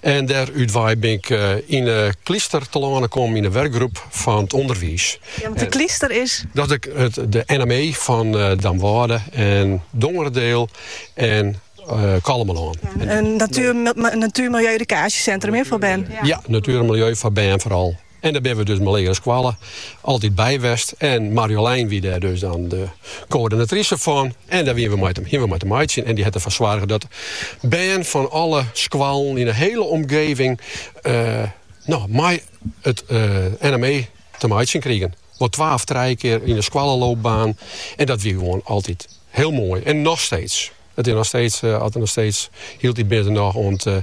En dêr útwei bin ik yn 'e Klyster telâne kommen yn 'e wurkgroep fan it ûnderwiis. Ja, want de Klyster is? Dat is de NME fan Damwâlde en Dongeradiel en Kollumerlân. In natuer-, miljeu-edukaasjesintrum foar bern? Ja, natuer en miljeu foar bern foaral. En dêr binne we dus mei legere skoallen altyd by west. En Marjolein wie dêr dus dan de koördinatrise fan. En dêr wiene we mei te, hiene we mei te meitsjen. En dy hat derfoar soarge dat bern fan alle skoallen yn 'e hiele omgeving eh, no, mei it eh, NME te meitsjen krigen. Wol twa of trije kear yn 'e skoalleloopbaan. En dat wie gewoan altyd hiel moai. En noch steeds. It is noch steeds, eh, as der noch steeds hieltyd binne der noch oan 't eh,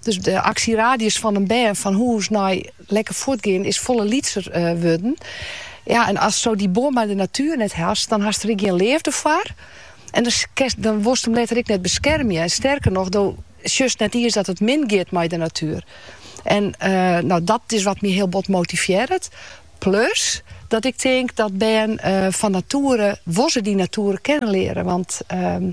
Dus de aksieradius fan in bern fan hûs nei lekker fuortgean is folle lytser eh, wurden. Ja, en asto dy bân mei de natuur net hast, dan hast der ek gjin leafde foar. En dan, dan wolst him letter ek net beskermje. En sterker noch, do sjochst net iens dat it min giet mei de natuer. En eh, no, dat is wat my hiel bot motivearret. Plus dat ik tink dat bern eh, fan natuere, wolst dy natuer kennen leare. Want ehm,